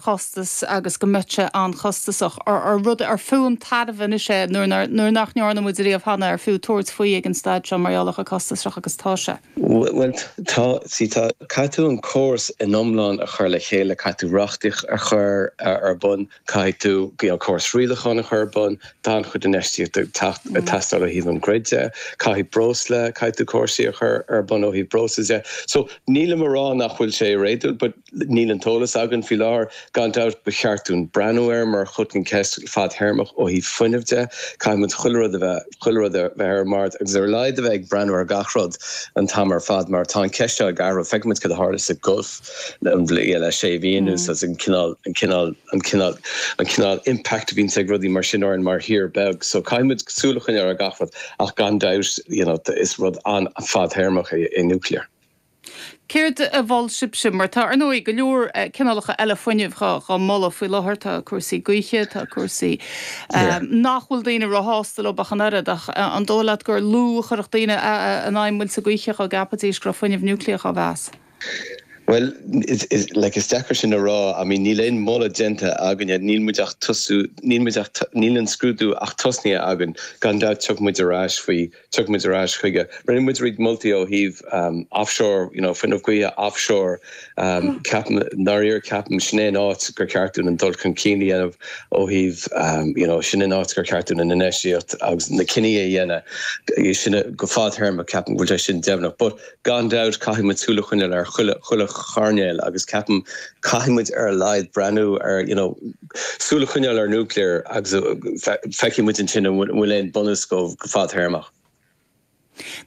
costas agus go mbeadh sé an-chostasach, rud ar fiú an tairbhe anois é nuair nach ndearna muid riamh cheana ar fiú tabhairt faoi ag an staid seo mar gheall ar chomh costasach agus atá sé. Bhuel tá, sea tá. Caithfidh tú an córas in iomlán a chur le chéile, caithfidh tú reachtaíocht a chur ar bun, caithfidh tú córas rialacháin a chur ar bun, tá an-chuid infheistíocht ag teacht, ag teastáil ó thaobh an grid de, caithfidh breosla, caithfidh tú córais a chur ar bun ó thaobh breosla de. So nílim a rá nach bhfuil sé réadúil. Níl an t-eolas againn faoi láthair. Gan dabht ba cheart dúinn breathnú air mar cheann, ceist fadthéarmach ó thaobh fuinnimh de. Caithfidh muid chuile rud a bheith, chuile rud a bheith ar an mBord agus ar a laghad a bheith ag breathnú ar gach rud an t-am ar fad mar tá an cheist seo ag athrú. Feicimid céard a tharla sa Gulf le, le sé mhí anuas as an cineál, an cineál, an cineál, an cineál impact a bhíonns ag rudaí mar sin orainn mar thír bheag. So caithfidh muid súil a choinneáil ar gach rud ach gan dabht, you know, is rud an-fhadthéarmach é nuclear. Céard a mholann sibhse? Mar tá, ar ndóigh, go leor cineálacha eile fuinnimh dhá moladh faoi láthair. Tá cúrsaí gaoithe, tá cúrsaí nach bhfuil daoine róshásta leo ach an oiread. Ach an dóigh leat gur lú a chuirfeadh daoine in aghaidh muillte gaoithe dá gceapfaidís go raibh fuinneamh núicléach á mheas? Bhuel, is deacair sin a rá. I mean níl aon mholadh déanta againne. Níl muid ach ag tosú, níl muid, níl an scrúdú ach tosnaithe againn. Gan dabht tiocfaidh muid ar ais faoi. Tiocfaidh muid ar ais chuige. Rinne muid roinnt moltaí ó thaobh offshore, you know, fuinneamh gaoithe offshore. Ceapaim, i ndáiríre ceapaim, sin é an áit gur cheart dúinn an dul chun cinn a dhéanamh ó thaobh, you know, sin an áit gur cheart dúinn an infheistíocht agus na cinní a dhéanamh. Sin, go fadthéarmach, ní cheapaim go bhfuil sé sin deimhneach. But, gan dabht, caithfidh muid súil a choinneáil ar chuile, chuile choirnéal agus ceapaim, caithfidh muid ar a laghad breathnú ar, you know, súil a choinneáil ar nuclear agus feicfidh muid ansin an bhfuil aon bunús dhó go fadthéarmach.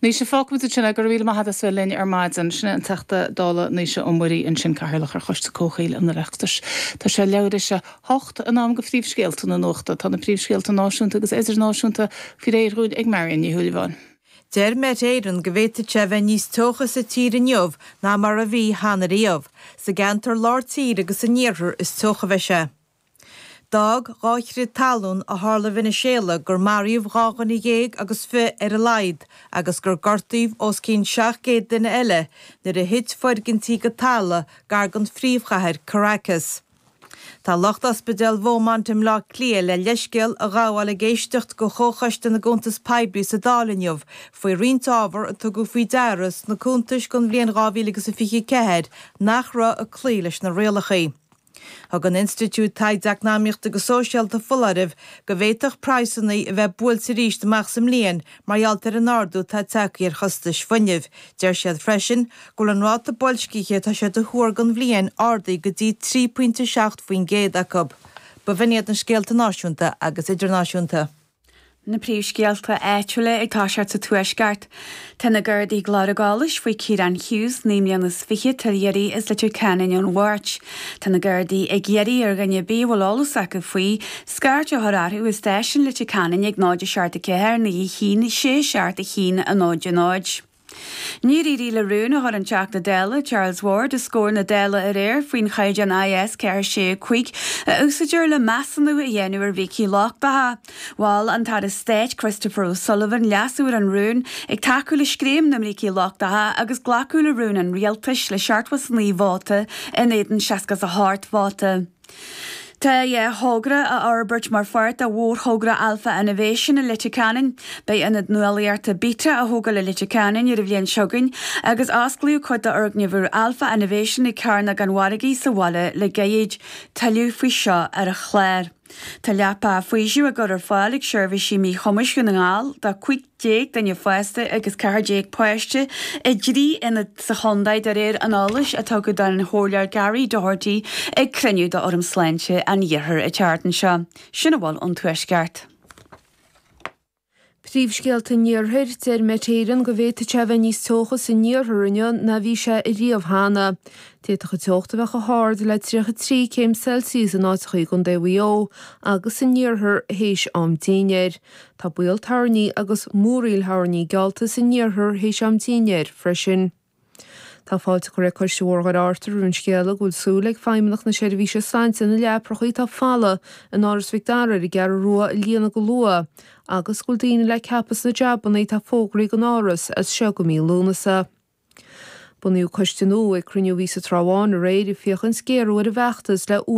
Naoise, fágfaidh muid ansin é. Go raibh míle maith agat as bheith linn ar maidin. Sin é an Teachta Dála Naoise Ó Muirí ansin, Cathaoirleach ar Choiste Comhshaoil an Oireachtais. Tá sé leathuair théis a hocht in am go phríomhscéalta na nuachta. Tá na príomhscéalta náisiúnta agus idirnáisiúnta faoi réir dhúinn ag Marion Ní Shúilleabháin. Deir Met Éireann go bhféadfadh sé a bheith níos teocha sa tír inniu ná mar a bhí cheana riamh. Sa gceantar lár tíre agus san iarthar is teocha a bheidh sé. D'fhág dhá chrith talún a tharla i Veiniséala gur maraíodh dhá dhuine dhéag agus fiche ar a laghad agus gur gortaíodh os cionn 700 duine eile nuair a thit foirgintí go talamh gar don phríomhchathair, Caracas. Tá lucht Ospidéal Beaumont i mBleá Cliath le leithscéal a ghabháil ag éisteacht go Chomhchoiste na gCuntas Poiblí sa Dáil inniu faoi roinnt ábhar a tugadh faoi deara sna cuntais don bhliain 2024 nach raibh ag cloí leis na rialacha. Thug an Institiúid Taighde Eacnamaíochta agus Sóisialta foláireamh go bhféadfadh praghsanna bia a bheith buailte arís amach sa mbliain mar gheall ar an ardú atá tagtha ar chostais fuinnimh. Deir siad freisin, go bhfuil an ráta boilscithe atá siad a thuar don bhliain ardaithe go dtí 3 pointe 7 faoin gcéad acu. Ba shin iad na scéalta náisiúnta agus idirnáisiúnta. Na príomhscéalta áitiúla ag toiseacht sa Tuaisceart. Tá na Gardaí ag lorg eolais faoi Kieran Hughes, naoi mbliana is fiche, atá ar iarraidh as Leitir Ceanainn ón Mháirt. Tá na Gardaí ag iarraidh ar dhuine ar bith a bhfuil eolas acu faoi, scairt a chur orthu i Stáisiún Leitir Ceanainn ag 0 7 4 9 1 6 7 1 0 0. Níor éirigh le rún a chur an Teachta Dála Charles Ward os comhair na Dála aréir faoin chaighdeán IS 465 a úsáidtear le measúnú a dhéanamh ar bhrící lochtacha. Mhol an tAire Stáit Christopher O'Sullivan leasú ar an rún, ag tacú le scéim na mbrící lochtacha agus glacadh le rún an Rialtais le 79 vóta in éadan 68 vóta. Tá dhá thogra á fhorbairt mar pháirt de mhórthogra Alpha Innovation i Leitir Ceanainn. Beidh Ionad Nuálaíochta Beta á thógáil i Leitir Ceanainn ar an bhliain seo chugainn agus osclaíodh cuid d'fhoirgneamh Alpha Innovation ag Cearnóg an Mhargaidh sa bhaile le gairid. Tuilleadh faoi seo ar an chlár. Tá leapacha faoisimh á gcur ar fáil ag Seirbhísí Míchumais Dhún na nGall do déag duine fásta agus ceathair déag páiste i dtrí ionad sa chontae de réir an eolais a tugadh don Chomhairleoir Gary Doherty ag cruinniú d'Fhóram Sláinte an Iarthair an tseachtain seo. Sin a bhfuil ón Tuaisceart. Príomhscéalta an Iarthair, Deir Met Éireann go bhféadfadh sé a bheith níos teocha san iarthar inniu ná a bhí sé riamh cheana. D'fhéadfadh an teocht a bheith chomh hard le 33 céim Celsius in áiteacha i gcontae Mhaigh Eo agus san iarthar théis am dinnéir. Tá baol toirní agus múraíl thoirní geallta san iarthar théis am dinnéir freisin. Tá fáilte curtha ag Coiste Bhóthar Dhoire Fhearta roimh an scéala go bhfuil súil ag Feidhmeannach na Seirbhíse Sláinte na leaprachaí atá folamh in Áras Mhic Dara ar an gCeathrú Rua a líonadh go luath agus go bhfuil daoine le ceapadh sna jabannaí atá fógraithe ag an Áras as seo go mí Lúnasa. Bunaíodh coiste nua ag cruinniú a bhí sa Trá Bháin aréir ag féachaint géarú ar an bhfeachtas le